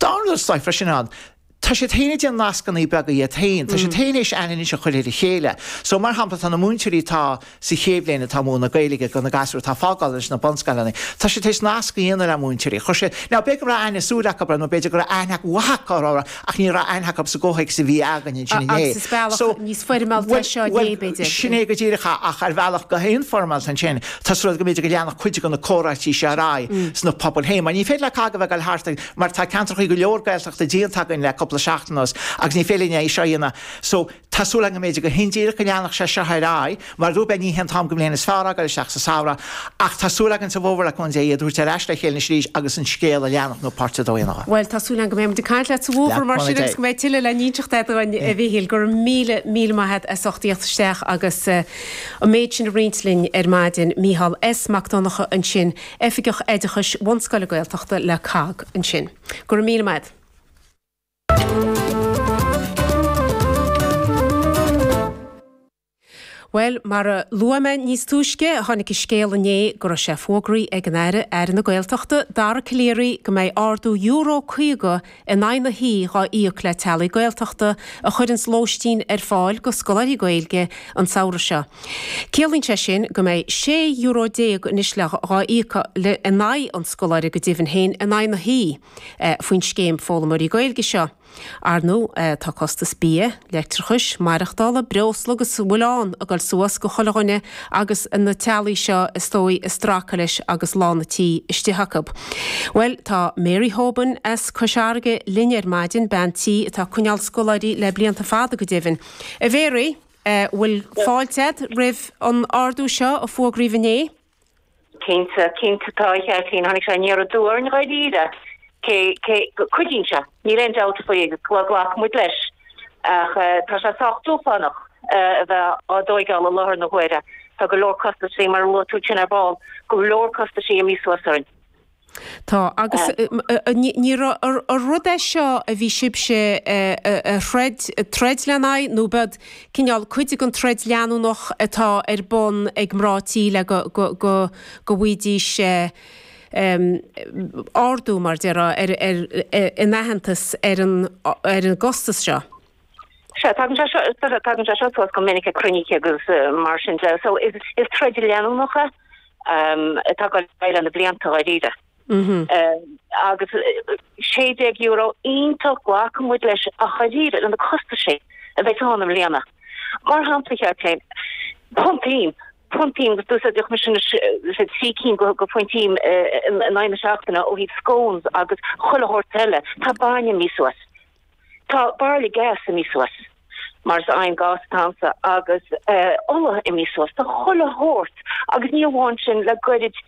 Dar leo seo freisin, ámh, tá siad féin ag déanamh nascanna beaga iad féin, tá siad tar éis aithne a chur ar a chéile. So, mar shampla, tá na múinteoirí atá sa chéad bhliain atá ag múineadh Gaeilge do na gasúir atá ag fágáil anois sna bunscoileanna, tá siad tar éis nasc a dhéanamh le múinteoirí. Chuir siad, now, b'fhéidir go raibh aithne súil acu orthu nó b'fhéidir go raibh aithne mhaith acu orthu, ach ní raibh aithne acu sa gcomhthéacs a bhí againn ansin inné. Agus is bealach níos foirmeálta é seo inné, b'fhéidir. Sin é go díreach, ach ar bhealach go neamhfhoirmeálta ansin. Tá súil agam, b'fhéidir, go leanfadh cuid de na comhráití seo ar aghaidh sna pobail féin, mar ní féidir le cách a bheith ag dul thart ag, mar tá ceantracha go leor Gaeltachta déanta againn le cúpla seachtain anuas agus ní féidir linn é seo a dhéanamh. So, tá súil agam, b'fhéidir, go hindíreach, go leanfadh sé seo ar aghaidh. Mar a dúirt mé, ní hé an t-am de bhliain is fearr fhágáil isteach sa samhradh, ach tá súil againn sa bhfómhar, le cúnamh Dé, iad a thabhairt ar ais le chéile anois arís agus an scéal a leanacht, nó páirt a dó a dhéanamh. Bhuel, tá súil agam go mbeidh muid ag caint leat sa bhfómhar, mar sin, agus go mbeidh tuilleadh le n-inseacht agat dúinn, a Mhíchíl. Go raibh míle, míle maith agat as ucht a theacht isteach agus. An méid sin a roinnt linn ar maidin, Micheál S. Mac Donnacha ansin, Oifigeach Oideachais Bunscoile Gaeltachta le COGG ansin. Go raibh míle maith agat. Bhuel, mar a luaigh mé níos túisce, tháinig an scéal inné go raibh sé fógraí ag an Aire, Aire na Gaeltachta, Dara Calleary, go mbeidh ardú Euro 50 in aghaidh na hoíche dhá íoc le teaghlaigh Gaeltachta a chuireanns lóistín ar fáil do scoláirí Gaeilge an samhradh seo. Ciallaíonn sé sin go mbeidh sé euro déag anois le dhá íoc in aghaidh an scoláire go deimhin féin in aghaidh na hoíche faoin scéim foghlaimeoirí Gaeilge seo. Ar ndóigh tá costas bia, leictreachais, maireachtála, breosla agus a bhfuil ann ag dul suas do chuile dhuine agus na teaghlaigh seo is dóigh ag stracadh leis agus lán a' tí istigh acu. Bhuel tá Mary Hoban as Cois Fharraige linn ar maidin, bean tí atá ag coinneáil scoláirí le blianta fada go deimhin. A Mhary, bhfuil fáilte a'd roimh an ardú seo a fógraíodh inné? Cinnte, cinnte, tá a cheart féin. Tháinig sé aniar aduaidh orainn dháiríre, cé go gcuidíonn sé, níl aon dabht faoi agus glacann muid leis, ach tá sé sách dúshlánach a bheith á dtóigeáil i láthair na huaire. Tá go leor costaisí, mar a luaigh tú fhéin ar ball, go leor costaisí imithe suas orainn. Tá, agus ní rud é seo a bhí sibhse a throid, troid lena aghaidh nó ab ea cineál, cuid den troid leanúnach atá ar bun ag mná tí le go bhfaighidís ardú, mar déarfá, mar aitheantas ar an gcostas seo? Sea, tagann sé seo, tagann sé seo suas go minic ag cruinnithe agus mar sin de. So, is troid leanúnach atá ag dul ar aghaidh le na blianta dháiríre. Agus €16 iontach glacfaidh muid leis ach dháiríre le na costaisí a bheidh ann i mbliana. Mar shampla, cheap mé, punt im, punt im, agus d'úsáidfeadh mise na trí cinn de phunt im in aghaidh na seachtaine ó thaobh scones agus chuile shórt eile, tá bainne imithe suas. Tá bairille gas imithe suas, mar is oigheann gás atá a'msa, agus ola imithe suas, tá chuile shórt, agus ní amháin sin, le goirid,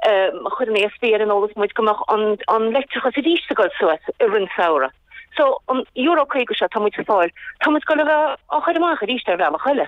chuir an ESB in eolas muid go mbeadh an leictreachas arís ag dul suas i rith an samhradh. So, an euro caoga seo atá muid ag fáil, tá muid ag goil a bheith á chur amach arís ar bhealach eile.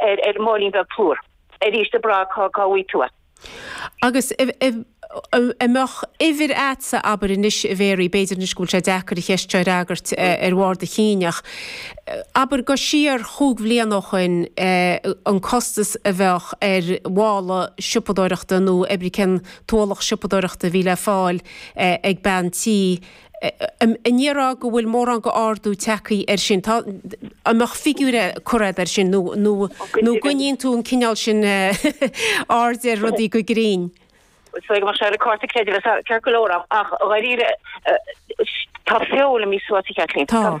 ar an máilín beag plúr. Arís, a Bragg, cá bhfaighidh tú é? Agus an mbeadh uimhir a'dsa, abair, anois, a Mhary, b'fhéidir anois go bhfuil sé deacair an cheist seo a fhreagairt ar bharr do chinn, ach abair gabh siar chúig bhliana ó shoin an costas a bheadh ar mhála siopadóireachta nó abair cén tualach siopadóireachta a bhí le fáil ag bean tí, An ndéarfá go bhfuil mórán de ardú tagthaí air sin. Tá, an mbeadh figiúr le cur a'd air sin nó, nó, nó an gcoinníonn tú an cineál sin aird ar rudaí go grinn? Is dóigh go mbeadh sé ar an gcárta creidmheasa ceart go leor ach dháiríre tá feoil imithe suas millteach, a Chaitlín. Tá.